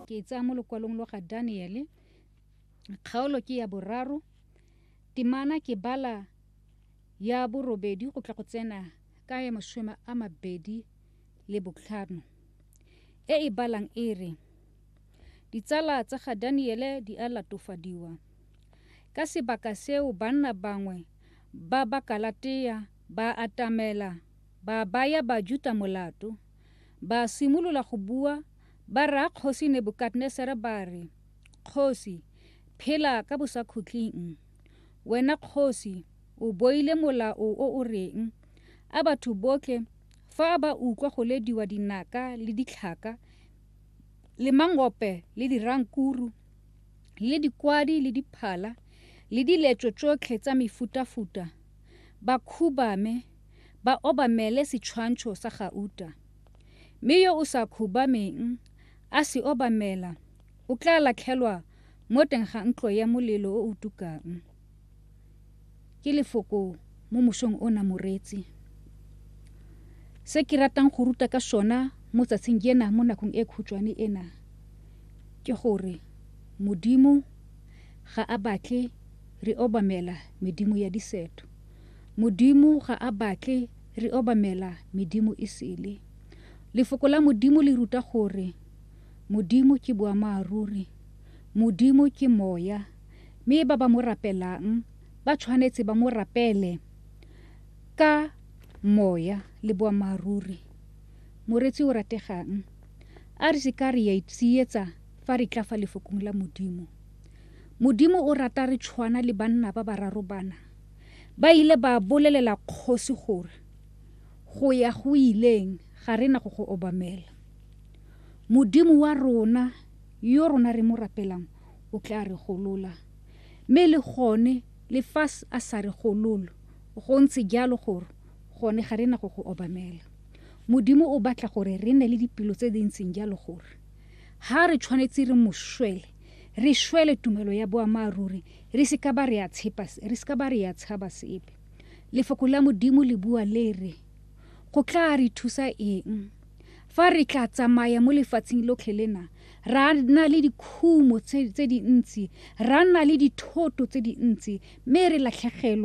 ke e tsaya mo lokwalong lo ga daniele kgaolo ke ya boraro temana ke bala ya borobedi go tla go tsena ka ya masome a mabedi le botlhano e e balang e re ditsala tsa ga daniele di a latofadiwa ka sebaka seo banna bangwe ba ba kalatea ba atamela ba baya bajuta molato Ba simolola go bua, ba raya Kgosi Nebukadnesare ba re, Kgosi, phela ka bosakhutleng! Wena kgosi, o boile molao o o reng, A batho botlhe fa ba utlwa go lediwa dinaka le ditlhaka le mangope le dirankuru le dikwadi le diphala le diletso tsotlhe tsa mefutafuta, ba khubame ba obamele setshwantsho sa gauta, mme yo o sa khubameng a se obamela o tla latlhelwa mo teng ga ntlo ya molelo o o tukang. Ke lefoko mo mosong ona moreetsi. Se ke ratang go ruta ka sona mo tsatsing jena mo nakong e khutshwane ena ke gore Modimo ga a batle re obamela medimo ya diseto. Modimo ga a batle re obamela medimo e sele. Lefoko la Modimo le ruta gore Modimo ke boamaaruri. Modimo ke Moya, mme ba ba mo rapelang ba tshwanetse ba mo rapele ka moya le boamaaruri. Moretsi o rategang, a re se ka re ya itsietsa fa re tla fa Lefokong la Modimo. Modimo o rata re tshwana le banna ba bararo bana. ba ile ba bolelela kgosi gore go ya go ileng ga re na go go obamela modimo wa rona yo rona re mo rapelang o tla re golola mme le gone le fa a sa re gololo go ntse jalo gore gone ga re na go go obamela modimo o batla gore re ne le dipelo tse di ntseng jalo gore ha re tshwanetse re mo swele re šwele tumelo ya boamaaruri re se ka ba re ya tshaba sepe lefoko la modimo le bua le re go tla re thusa eng fa re tla tsamaya mo lefatsheng lotlhe lena ra nna le dikhumo tse dintsi ra nna le dithoto tse dintsi mme re latlhegelwa